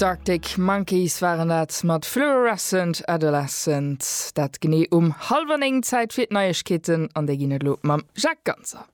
D'Arctic Monkeys waren dat mat Fluorescent Adolescent. Dat genee um hallwer néng. Zäit fir d'Neiegkeeten an déi ginn et elo mam Jacques Ganser.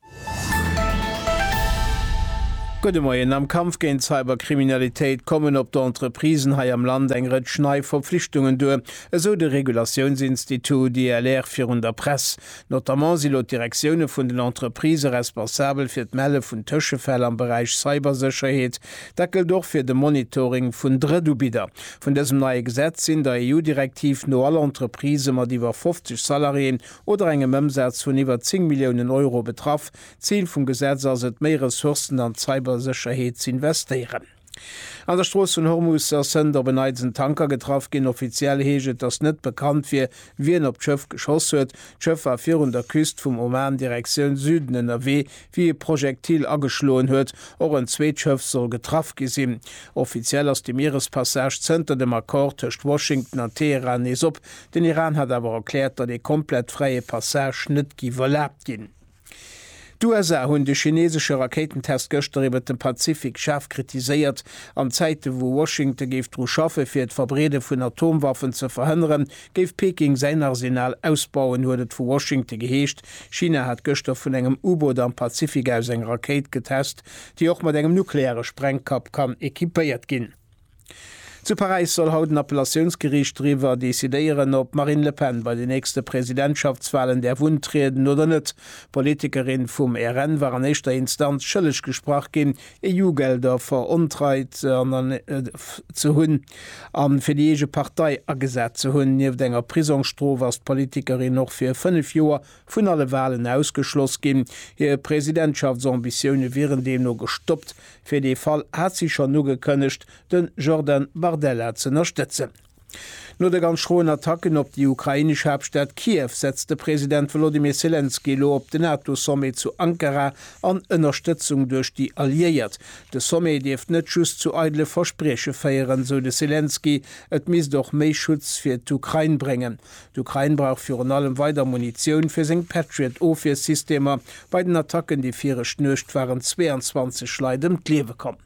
Gudde Moien. Am Kampf géint d'Cyberkriminalitéit kommen op d'Entreprisen hei am Land eng Rëtsch nei Verpflichtungen duer, esou de Regulatiounsinstitut ILR virun der Press. Notamment si lo d'Direktioune vun den Entreprisë responsabel fir d'Melle vun Tëschefäll am Beräich Cybersécherheet. Dat gëllt och fir de Monitoring vun Drëttubidder. Vun dësem neie Gesetz sinn der EU-Direktiv no all Entreprisë mat iwwer 50 Salariéen oder engem Ëmsaz vun iwwer 10 Milliounen Euro betraff. D'Zil vum Gesetz ass et, méi Ressourcen an d'Cybersécherheet z'investéieren. An der Strooss vun Hormus ass zënter op en Neits en Tanker getraff ginn. Offiziell heescht et, datt net bekannt wier, wien op d'Schëff geschoss huet. D'Schëff war virun der Küst vum Oman Direktioun Süden ënnerwee, wéi e Projektil ageschloen huet. Och en zweet Schëff soll getraff gi sinn. Offiziell ass de Mierespassage zënter dem Accord tëscht Washington an Teheran nees op. Den Iran hat awer erkläert, datt ee komplett fräie Passage net géif erlaabt ginn. D'USA hunn de chineesesche Rakéitentest gëschter iwwert de Pazifik schaarf kritiséiert. An Zäite wou Washington géif dru schaffe fir d'Verbreede vun Atomwaffen ze verhënneren, géif Peking säin Arsenal ausbauen, huet et vu Washington geheescht. China hat gëschter vun engem U-Boot am Pazifik aus eng Rakéit getest, déi och mat engem nukleare Sprengkapp kann equipéiert ginn. Zu Paräis soll haut en Appellatiounsgeriicht driwwer decidéieren, ob d'Marine Le Pen bei den nächste Presidentschaftswalen däerf untrieden oder net. D'Politikerin vum RN war an éischter Instanz schëlleg gesprach ginn, EU-Gelder verontreit ze hunn a fir déi eege Partei agesat ze hunn. Nieft enger Prisongsstrof ass d'Politikerin och fir fënnef Joer Vun alle Walen ausgeschloss ginn. Hir Presidentschaftsambitionen wieren deemno gestoppt. Fir dee Fall hat si schonn ugekënnegt, de Jordan Bardella z'ënnerstëtzen. No de ganz schroen Attacken op déi ukrainesch Haaptstad Kiew setzt de President Wolodymyr Selenskyj elo op de NATO-Sommet zu Ankara an Ënnerstëtzung duerch déi Alliéiert. De Sommet dierft net just zu eidele Versprieche féieren, sou de Selenskyj, et misst och méi Schutz fir d'Ukrain bréngen. D'Ukrain brauch virun allem weider Munitioun fir seng Patriot-Ofwiersystemer. Bei den Attacken déi viregt Nuecht waren 22 Leit ëm d'Liewe komm.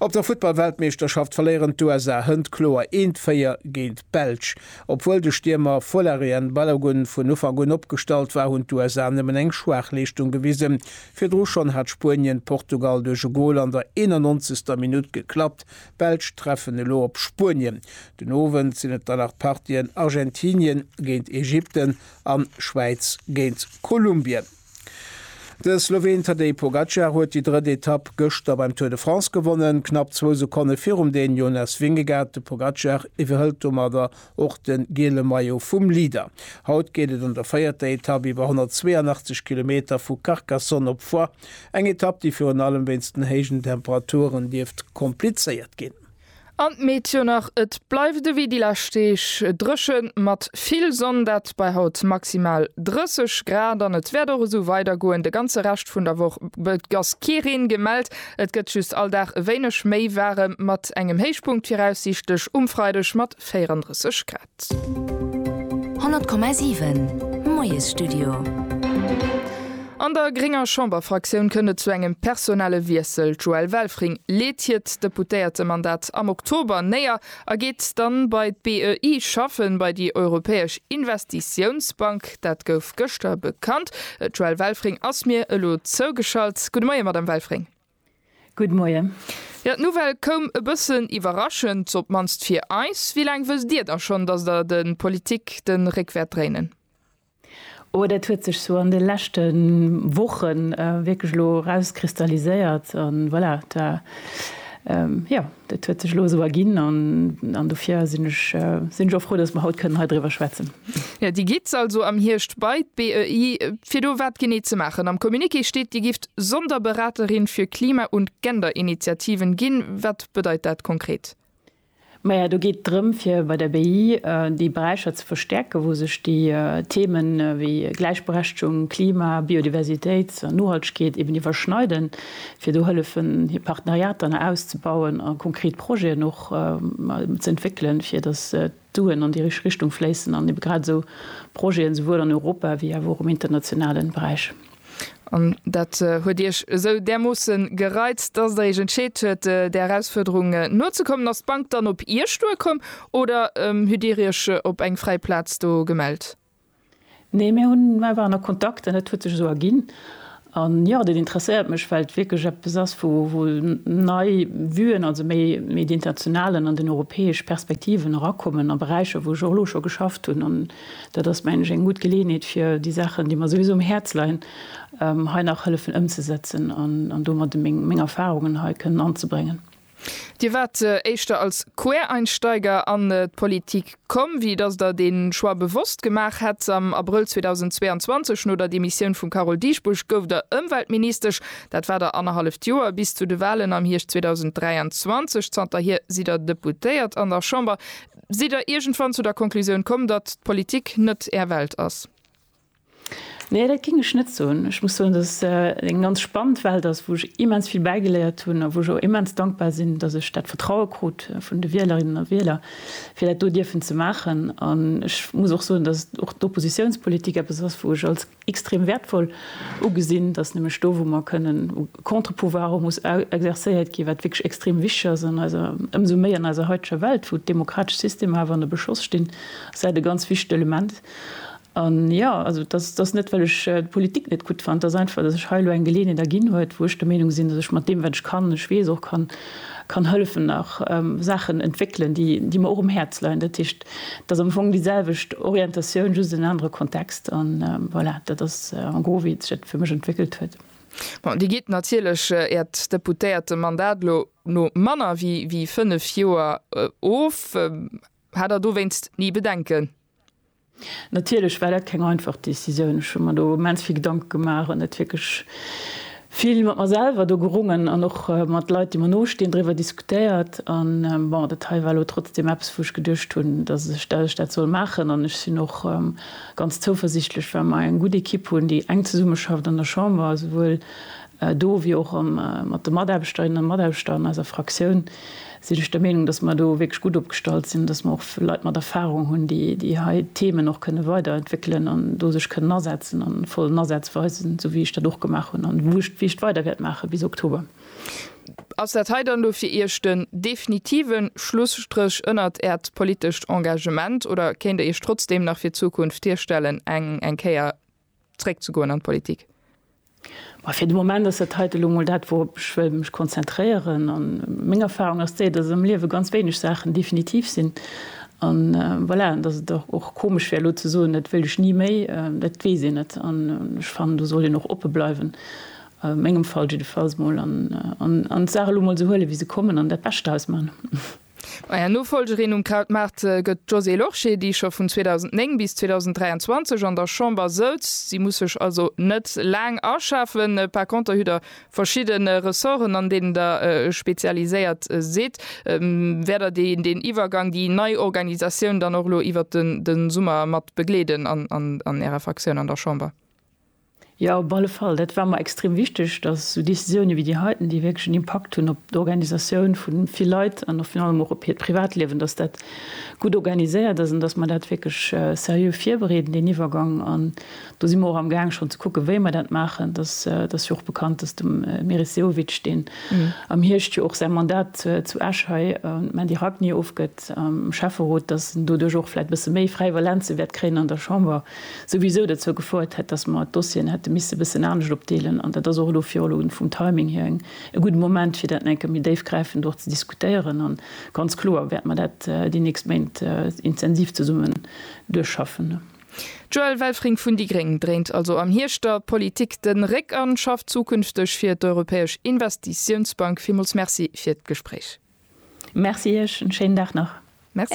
Op der Futtball-Weltmeeschterschaft verléieren d'USA Hënt kloer eent 4 géint d'Belsch. Obwuel de Stiermer Folarin Balogun vun Ufank un opgestallt war, hunn d'USA nëmmen eng schwaach Leeschtung gewisen. Virdru schonn hat Spuenien Portugal duerch e Gol an der 91. Minutt geklappt, D'Belsch treffen elo op Spuenien. Den Owend sinn et dann nach d'Partien Argentinien géint Ägypten an Schwäiz géint Kolumbien. De Sloween Tadej Pogacar huet déi drëtt Etapp gëschter beim Tour de France gewonnen. Knapp zwou Sekonne virum Dän Jonas Vingegaard. De Pogacar iwwerhëlt domadder Och de giele Maillot vum Leader. Haut geet et an der véierter Etapp iwwer 182 Kilometer vu Carcassonne op Foix. Eng Etapp, déi virun allem wéinst den héijen Temperaturen dierft komplizéiert ginn. An d'Meteo nach, Et bleift ewéi déi lescht Deeg dréche mat vill Sonn, dat bei haut maximal 30 Grad. An et wäert och esou weidergoen de ganze Rescht vun der Woch. Et ass kee Reen gemellt, et gëtt just all Dag e wéineg méi waarem mat engem Héichpunkt viraussiichtlech um Freideg mat 34 Grad. 100,7 Moiesstudio. An der grénger Chamberfraktioun kënnt et zu engem personelle Wiessel. D'Joëlle Welfring leet hiert Deputéiertemandat am Oktober néier a geet dann bei d'BEI schaffen, bei déi Europäesch Investitiounsbank. Dat gouf gëschter bekannt. D'Joëlle Welfring ass mir elo zougeschalt. Gudde Moie, Madamm Welfring. Good Moien. Jo, d'Nouvelle koum e bëssen iwwerraschend, op d'mannst fir eis. Wéi laang wësst Dir da schonn, datt Der de Politik de Réck wäert dréinen? Oh, dat huet sech sou an de leschte Woche wierklech elo erauskristalliséiert. An voilà, da jo. Dat huet sech elo esou erginn an dofir sinn ech och frou, datt mer haut kënnen hei driwwer schwätzen. Jo, Dir gitt also am Hierscht bei d'BEI, fir do wat genee ze maachen? Am Communiqué steet, Dir gifft Sonderberaterin für Klima und Genderinitiativen ginn. Wat bedeit dat konkret? Maja, do geet et drëm, fir bei der BEI déi Beräicher ze verstäerken, wou sech déi Themen wéi Gläichberechtegung, Klima, Biodiversitéit an Nohaltegkeet eben iwwerschneiden. fir do hëllefen hir Partenariater nach auszebauen a konkret Projeten och ze entwéckelen, fir datt d'Suen an déi richteg Richtung fléissen an ebe grad esou Projeten esouwuel an Europa wéi awer och am internationalen Beräich. An dat huet Iech esou därmoossen gereizt, datt Der Iech entscheet huet, där Erausfuerderung nozekommen. Ass d'Bank dann op Iech duerkomm oder hutt Dir Iech op eng fräi Plaz do gemellt? Nee, mir hunn, mer waren a Kontakt an dat huet sech esou erginn. An jo, dat interesséiert mech, well et wierklech eppes ass, wou wou nei Vuen, also méi méi déi internationalen an déi europäesch Perspektiven erakommen a Beräicher, wou ech och elo scho geschafft hunn. An dat ass, mengen ech, eng gutt Geleeënheet, fir déi Saachen, déi mer souwisou um Häerz leien, hei nach hëllefen ëmzesetzen an domadde meng meng Erfahrungen hei kënnen anzebréngen. Dir waart éischter als Quereinsteiger an d'Politik komm, wéi dass Der dee Choix bewosst gemaach hätt. Am Abrëll 2022, no der Demissioun vum Carole Dieschbourg, gouft Der Ëmweltministesch. Dat war Der annerhalleft Joer, bis zu de Wahlen am Hierscht 2023. Zanterhier sidd Der Deputéiert an der Chamber. Sidd Der iergendwann zu der Konklusioun komm, datt d'Politik net Är Welt ass? Nee, dat géing ech net soen. Ech muss soen, dass et eng ganz spannend Welt ass, wou ech immens vill bäigeléiert hunn a wou ech och immens dankbar sinn, dass ech dat Vertraue krut vun de Wielerinnen a Wieler, fir dat do dierfen ze maachen. An ech muss och soen, dass och d'Oppositiounspolitik eppes ass, wou ech als extrem wäertvoll ugesinn, dass nämlech do, wou mer kënnen, wou e Contre-pouvoir och muss exerzéiert ginn, wat wierklech extrem wichteg ass an eiser, ëmsou méi an eiser heiteger Welt, wou d'demokratesch Systemer awer ënner Beschoss stinn, ass dat e ganz wichtegt Element. An jo, also dass et ass net, well ech d'Politik net gutt fannen, et ass einfach, dass ech hei elo eng Geleeënheet erginn huet, wou ech der Meenung sinn, dass ech mat deem, wat ech kann, ech weess och kann, kann hëllefen nach Saachen entwéckelen, déi mer och um Häerz leien. Dat heescht, et ass am Fong déi selwecht Orientatioun, just en anere Kontext. A voilà, dat ass en gros, wéi sech dat fir mech entwéckelt huet. Bon, Dir gitt natierlech Äert Deputéiertemandat elo no manner wéi fënnef Joer of. Hat Der dowéinst ni Bedenken? Natierlech war dat keng einfach Decisioun. Ech hu mer do immens vill Gedanke gemaach an et wierklech vill mat mer selwer do gerungen an och mat Leit, déi mer no stinn, driwwer diskutéiert. An bon, dat hei war elo trotzdeem eppes, wou ech geduecht hunn, datt ech dat soll maachen. An ech sinn och ganz zouversichtlech, well mer eng gutt Ekipp hunn, déi enk zesummeschafft an der Chamber, esouwuel do wéi och mat de Mataarbechterinnen a Mataarbechter an eiser Fraktioun, sinn ech der Meenung, dass mer do wierklech gutt opgestallt sinn, dass mer och Leit mat Erfahrung hunn, déi hei d'Themen och kënne weiderentwéckelen an do sech kënnen asetzen a vollen Asaz weisen, esou wéi ech dat och gemaach hunn an wou ech d'Wicht weider wäert maache bis Oktober. Ass dat hei dann elo fir Iech den definitive Schlusstréch ënnert Äert politescht Engagement oder kéint Der Iech trotzdeem nach fir d'Zukunft virstellen, eng Kéier zréck ze goen an d'Politik? Bon, fir de Moment ass dat heiten elo mol dat, wourop ech wëll mech konzentréieren. A meng Erfarung ass déi, dass am Liewe ganz wéineg Saachen definitiv sinn. A voilà, an dass et dach och komesch wär elo ze soen, dat wëll ech ni méi, dat weess een net. An ech fannen, do sollt een och oppe bleiwen, a mengem Fall jiddefalls mol, an d'Saache elo mol esou huelen, wéi se kommen, an dat Bescht draus maachen. Maja, Nofolgerin um Krautmaart gëtt d'Josée Lorsché, déi scho vun 2009 bis 2023 an der Chamber souz. Si muss sech also net laang aschafen. Par conter hutt Der verschidde Ressorten, an deenen Der spezialiséiert sidd. Wäert Der deen Iwwergang, déi nei Organisatioun dann och elo iwwert de Summer mat begleeden an Ärer Fraktioun an der Chamber? Jo, op alle Fall. Dat war mer extrem wichteg, dass esou Décisiounen wéi déi heiten, déi wierklech en Impakt hunn op d'Organisatioun vu vill Leit an och virun allem och op hiert Privatliewen, dass dat gutt organiséiert ass an dass mer dat wierklech seriö virbereeden, deen Iwwergang. An do si mer och amgaang schonn ze kucken, wéi mer dat maachen. Et ass jo och bekannt, dass de Meris Sehovic, deen am Hierscht jo och säi Mandat zu Esch hei un d'Mandy Ragni ofgëtt am Schäfferot, dass en doduerch och vläicht e bësse méi fräi Valenze wäert kréien an der Chamber. souwisou derzou gefouert hätt, dass mer d'Dossieren hätte misse bëssen anescht opdeelen. An dat ass och elo fir elo vum Timing hier eng e gudde Moment, fir dat eng Kéier méi déifgräifend och ze diskutéieren. A ganz kloer wäerte mer dat déi nächst Méint intensiv zesummen duerchschaffen. D'Joëlle Welfring vun déi gréng dréint also am Hierscht der Politik de Réck an schafft zukünfteg fir d'Europäesch Investitiounsbank. Villmools Merci fir d'Gespréich. Merci Iech, en schéinen Dag nach. Merci.